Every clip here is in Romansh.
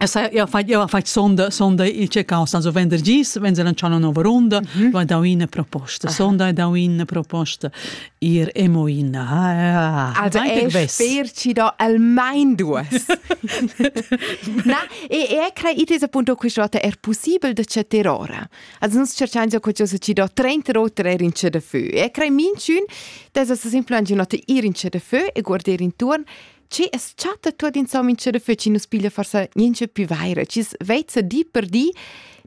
Jau hai fatg sonda, sonda il checcau stanzo venderdis, venza lanciau una nova runda, mhm. ho dau ina proposta. Sonda ha dau ina proposta ir emo in. Ah, also è sper ci do almain duas. Na, e e crei it esa punto qui sciota er possibel de cetter ora. Also nus cerchiam ja qualcosa ci do 30 rotre er in ce de feu. E crei minchun, des es simpel an ginot ir in ce de feu e guarder intorn Ci es chatta tuot insomma che da feci nus piglia forsa niente più vaira, ci vezza di per di,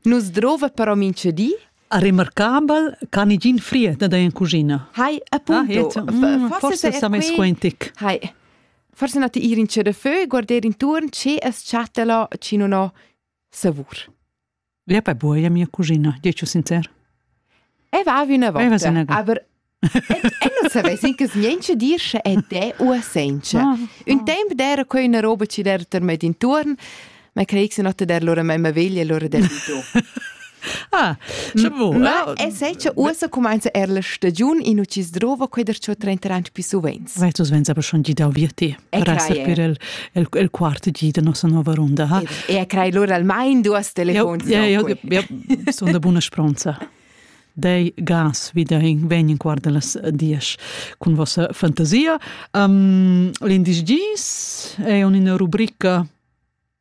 nus drova però mince di. A remarcabel can i gin fried da in cucina. Hai, appunto. Ah, mm, forse sa mai squentic. Hai. Forse nati ir in ce da fö, guardare intorno, ce es chatta la, ci non ho savur. Ja pa buoja mia cugina, dici sincer. E va üna volta. Aber Ella savess incas niente dir sche è te u a senza. Ah, Un ah. tempo d'era quella una roba ci der ter met intorno, ma credo se notte der loro mamma veglia e loro der di tu. Ah, sche bo. Ma è senza usa comincia er la stagione in ucis drova quei der ciò 30 anni più sovente. Sai tu svenza per schon gidau vir ti per esser per el el el quart di da nossa nova ronda ha e crai lura almain duas telefons ja ja ja son da buna spronza dei gas vi da in vegn in quart las dies cun vossa fantasia um, l'indis gis è un una rubrica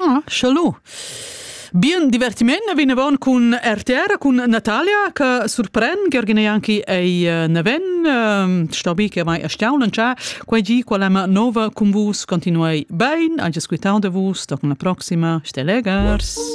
Ah, challo. Bien divertiment vinavon cun RTR, cun Natalia, che surpren Gheorghin e anche ei eh, naven. Ehm, sto bi che mai stiamo lancià. Quei gi quella nova con vus continuei ben, anche squitando vus, da una prossima, ste legers.